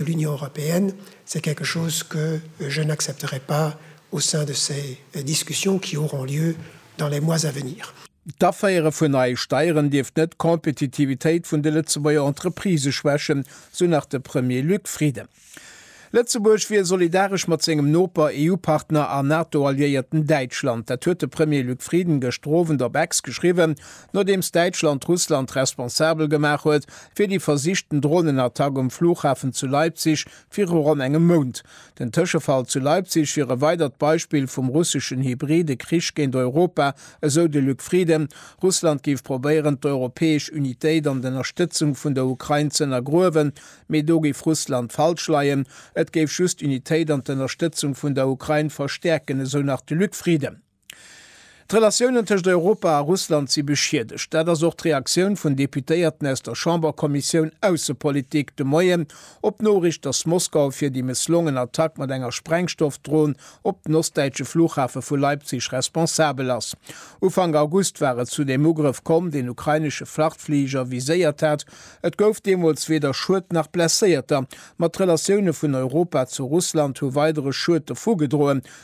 L'Union européenne, c'est quelque chose que je n'accepterai pas au sein de ces discussions qui auront lieu dans les mois à venir. D'Aféiere vun neie Steieren dierft net d'Kompetitivitéit vun de Lëtzebuerger Entreprisë schwächen, sou nach de Premier Luc Frieden. Lëtzebuerg wier solidaresch mat sengem Noper, EU-Partner an NATO-Alliéierten Däitschland. Dat huet de Premier Luc Frieden gëschter Owend op X geschriwwen, Nodeems Däitschland Russland responsabel gemaach huet fir déi versichten Dronenattack um Flughafen zu Leipzig viru ronn engem Mount. Den Tëschefall zu Leipzig wier e weidert Beispill vum russeschen hybride Krich géint Europa, esou de Luc Frieden. Russland géif probéieren, d'europäesch Unitéit an d'Ënnerstëtzung vun der Ukrain z'ënnergruewen. Mee do géif Russland falsch leien. Et géif just d'Unitéit an d'Ënnerstëtzung vun der Ukrain verstäerken, esou nach de Luc Frieden. D'Relatiounen tëscht Europa a Russland si beschiedegt. Dat ass och d'Reaktioun vun Deputéierten aus der Chamberkommissioun Aussepolitik de Moien op d'Noriicht, datt Moskau fir déi mësslongen Attack mat enger Sprengstoffdron op den ostdäitsche Flughafe vu Leipzig responsabel ass. Ufank August war et zu deem Ugrëff komm, deen ukrainesche Frachtfliger viséiert hat. Et gouf deemools weder Schued nach Blesséierter, ma d'Relatioune vun Europa zu Russland hu weidere Schued dovugedroen,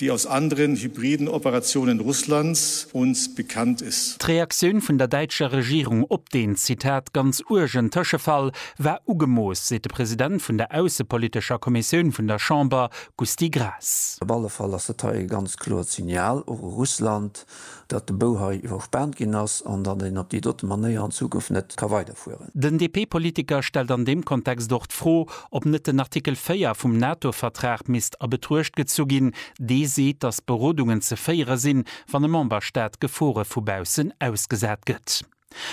déi aus anderen hybriden Operationen Russlands uns bekannt ist. D'Reaktioun vun der däitscher Regierung op deen, Zitat, ganz uergen Tëschefall war ugemooss, seet de President vun der aussepolitescher Kommissioun vun der Chamber, Gusty Graas. Op alle Fall ass dat hei e ganz kloert Signal och u Russland, datt de Bou hei iwwerspaant ginn ass an datt een op déi dote Manéier an Zukunft net ka weiderfueren. Den DP-Politiker stellt an deem Kontext och d'Fro, ob net den Artikel 4 vum NATO-Vertrag misst a Betruecht gezu ginn, dee seet, datt Berodungen ze féiere sinn, wann e Memberstaat Gefore vu baussen ausgesat gëtt.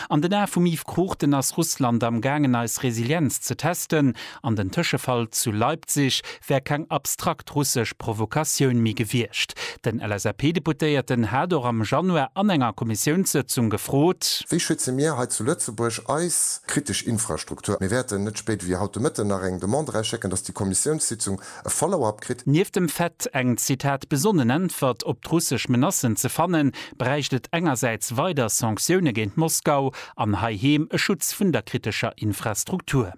An den Ae vum Yves Cruchten ass Russland am gaangen eis Resilienz ze testen, an den Tëschefall zu Leipzig wär keng abstrakt russesch Provokatioun méi gewiescht. Den LSAP-Deputéierten hat och am Januar an enger Kommissiounssëtzung gefrot. Wéi schütze mir hei zu Lëtzebuerg eis kritesch Infrastruktur? Mir wäerten net spéider wéi haut de Mëtten nach eng Demande erausschécken, dass déi Kommissiounssitzung e Follow-up kritt. Nieft dem Fait, eng Zitat besonnen Äntwert op d'russesch Menacen ze fannen, bräicht et engersäits weider Sanktioune géint Moskau an heiheem e Schutz vun der kritescher Infrastruktur.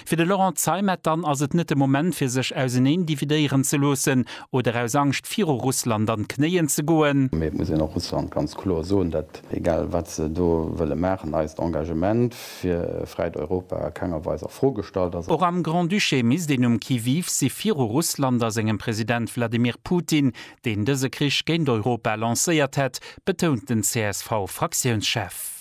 Fir de Laurent Zeimet dann ass et net de Moment fir sech auserneen dividéieren ze loossen oder aus Angscht viru Russland an d'Knéien ze goen. Mee et muss een och Russland ganz kloer soen, dat egal wat se do wëlle maachen, eist Engagement fir fräit Europa a kenger Weis a Fro gestallt ass. Och am Grand-Duché misst een um Qui-vive si viru Russland a sengem President Wladimir Putin, deen dëse Krich géint Europa lancéiert hätt, betount den CSV-Fraktiounschef.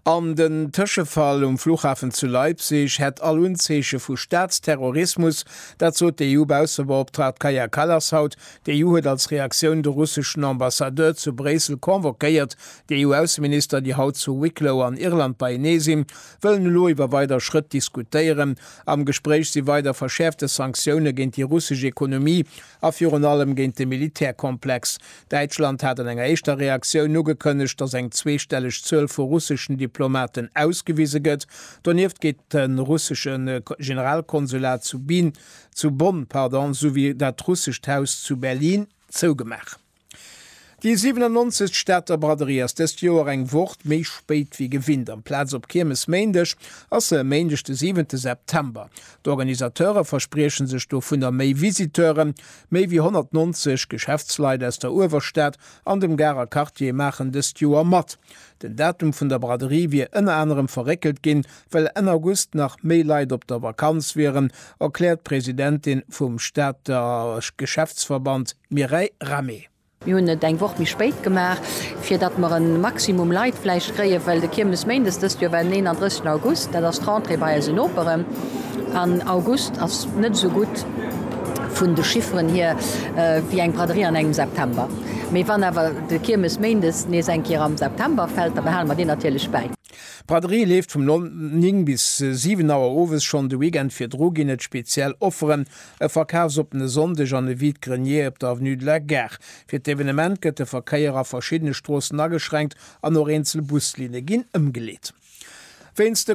An den Tëschefall um Flughafen zu Leipzig hätt all Unzeeche vu Staatsterrorismus. Dat sot de EU-Baussebeoptraagt Kaja Kallas haut. D'EU huet als Reaktioun de russeschen Ambassadeur zu Bréissel convoquéiert, Déi EU-Ausseminister, déi haut zu Wicklow an Irland beienee sinn, wëllen elo iwwer weider Schrëtt diskutéieren. Am Gespréich si weider verschäerfte Sanktioune géint déi russesch Ekonomie a virun allem géint de Militärkomplex. Däitschland hat an enger éischter Reaktioun ugekënnegt, datt eng zweestelleg Zuel vu russeschen Diplomaten ausgewise gëtt. Donieft geet de russesche Generalkonsulat zu Bonn, souwéi dat russescht Haus zu Berlin zougemaach. Déi 97. Stater Braderie ass dëst Joer eng Wocht méi spéit wéi gewinnt. Amplaz op Kiermesméindeg ass se e Méindeg de 7 September. D'Organisateure versprieche sech dovunner méi Visiteuren. Méi wéi 190 Geschäftsleit aus der Uewerstad an dem Garer Quartier maachen dëst Joer mat. Den Datum vun der Braderie wier ënner anerem verréckelt ginn, well Enn August nach méi Leit op der Vakanz wieren, erkläert d'Presidentin vum Stater Geschäftsverband. D'Mireille Rahmé. Mir hunn et eng Woch méi spéit gemaach, fir datt mer e Maximum Leit vläicht kréien, well de Kiermesméindes dëst Joer war den 31 August, dat ass d'Rentrée bei eise Noperen, an August ass net esou gutt vun de Chifferen hier wéi eng Braderie an engem September. Mee wann awer de Kiermesméindes nees eng Kéier am September fält, da behale mer deen natierlech bäi. D'Braderie leeft vum 9 bis 7 Auer owes, schonn de Weekend virdru ginn et speziell Offeren. E Verkafsopen e Sonndeg an e Vide-grenier op der Avenue de la Gare. Fir d'Evenement gëtt de Verkéier a verschiddene Stroossen ageschränkt an och eenzel Buslinne ginn ëmgeleet. Wéinst de